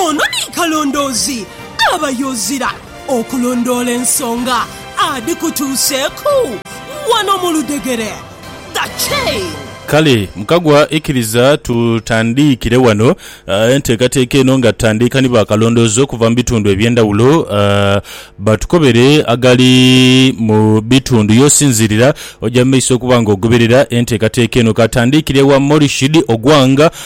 Ono ni kalondoozi aba yoozira okulondoola ensonga adhikutuuseeku wano mu ludhegere. The Chain. Kale mukagwa ikiriza tutandiikire wano enteekateeka eno nga tutandiika ni bakalondoozi okuva mu bitundu eby'endhawulo batukobere agali mu bitundu y'osinziirira. Oja mu maiso okuba nga ogoberera enteekateeka eno. Ka tandiikire wa Morishid Ogwang.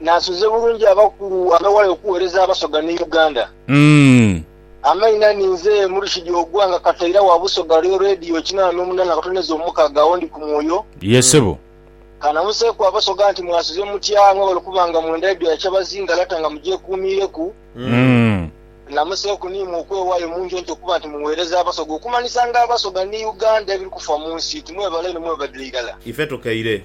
Naasuze bulungi abakulu abewale okuwereza abasoga ni Uganda. Amaina ni nze Murshid Ogwa nga kataira wa Busoga Real Radio kinana nomunana akatoneza omukaga agho ndi ku mwoyo. Kanamuseku abasoga nti mwasuze mutya mwebale okuba nga mwenda edho ya kyabazinga lata nga mugyekuumiireku. Namuseku ni imwe okwewayo munjonto okuba nti muwereza abasoga okumanisa nga abasoga ni Uganda ebiri kufa munsi. Tumwebale inho mwebadire irala. Ife tukeire.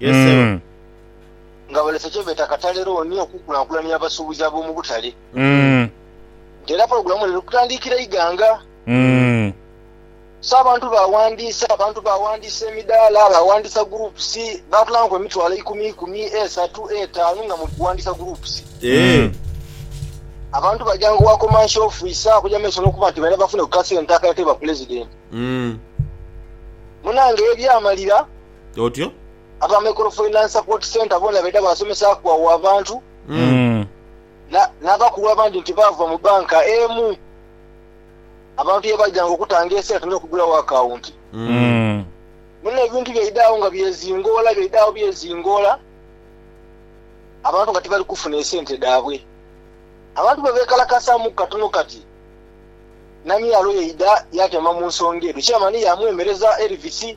Ye ssebo. Mm. nga balese kyebeeta katale looni okukulankulania abasuubuzi ab'omu butale Mm. nti era pulogulaamu eno eri kutandiikira Iganga. Mm. So abantu baawandiisa, abantu baawandiisa emidaala, baawandiisa groups, baatulaanku emitwalo eikumi eikumi, esatu, etaanu nga muli kuwandiisa groups. Eeh. Mm. Abantu baja ng'owa Commercial Officer okuja mu maiso n'okuba nti baidha bafune ku kasente akaleetebwa Pulezidenti. Mm. Munange ebyamalira. Otyo. Aba Microfinance Support Centre boona baidha baasomesaaku agho abantu Mm. na- n'abakulu abandi nti baava mu bbanka emu abantu ye baidhanga okutanga esente n'okugulawo akawunti. Mm. Mm. Muno ebintu byaidhagho nga byezingoola byaidhagho byezingoola abantu nga tibali kufuna esente dhaabwe. Abantu bwe beekalakasaamuku katono kati na myalo yaidha yaatema mu nsonga edho chairman yaamwemereza Elvis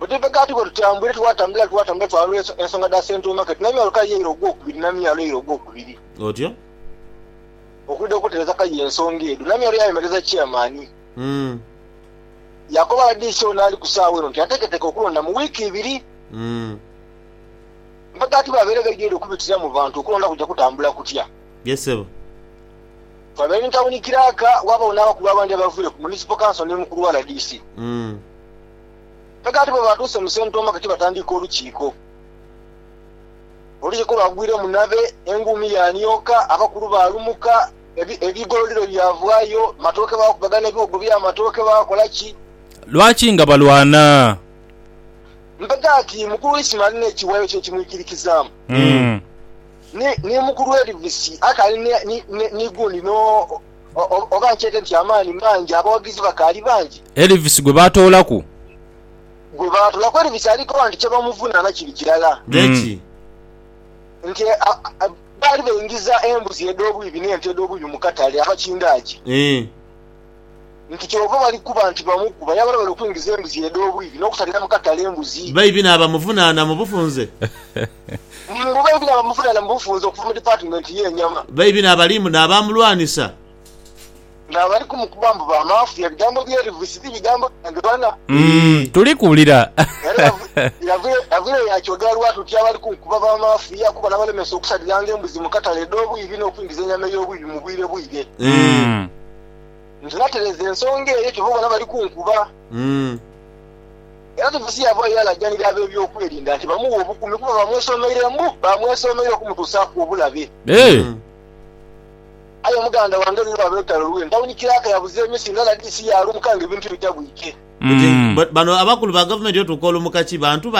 Oteeka kaati bwe tutambwire, twatambula, twatambula, twalula ensonga dha Central Market na myalo kaye eira ogwokubiri na myalo eira ogwokubiri. Otyo. Okwidha okutereza kaye ensonga edho, Namyalo yayemereza Chairman. Umm. Yaakoba rdc ono ali ku saawa eno nti ateeketeeke okulonda mu wiiki ibiri. Umm. Mpa kaati baabaire baidhwire okubitira mu bantu okulonda kuja kutambula kutya? Ye ssebo. Twabaire ni tawuni kiraaka, waabagho n'abakulu abandi abaviire ku Municipal Council ni mukulu wa rdc. Umm. Aye kaati bwe baatuuse mu sentoomake ki batandiika olukiiko. Olukiiko lwagwira omunabe, enguumi yaanioka, abakulu baalumuka, ebigololiro byavwayo, amatooke baakubagana ebiwogo by'amatooke baakola ki? Lwaki nga balwana? Mpe kaati mukulu Isma alina ekiwayo kye ekimwikirikizaamu, ni mukulu Elvis akaali ni gundi no. Oba nkyete nti amaani mangi, abawagizi bakaali bangi. Elvis gwe baatoolaku. Gwe baatoolaku. Elvis ali koba nti kye bamuvunaana kiri kirala. Ghe ki? Nti baali baingiza embuzi edh'obwibi n'ente edh'obwibi mu katale, abakindaaji. Eeh. Nti kyova bali kuba nti bamukuba. Yabala bali okwingiza embuzi edh'obwibi n'okutalira mu katale embuzi. Baibi n'abamuvunaana mu bufunze. Mu baibi n'abamuvunana mu bufunze okuva mu Dipatimenti y'Enyama. Baibi n'abalimu n'abamulwanisa. N'abali kumukuba mbu ba mafia. Ebigambo bye Elvis ti bigambo byange bana. Tuli kuwulira. Era yavire yaakyogera lwatu nti abali kunkuba ba mafia kuba nabalemesa okusaliranga embuzi mu katale edh'obwibi n'okwingiza enyama ey'obwibi mu bwire bwire. Nze natereeza ensonga eyo kyova obona bali kunkuba. Era Tiitusi yaavaayo yaalajanira ab'ebyokwerinda nti bamughe obukuumi kuba baamwesomeire mbu baamwesomeire okumutuusaaku obulabe. Eeh! Aye muganda wange ni lwa lwetalo lwe ntawuni kiraaka yabuza emisi ndala dhi si yaalumuka ng'ebintu tibitabwike. Oti bano abakulu ba gavumenti otuuka olumuka ki bantu bali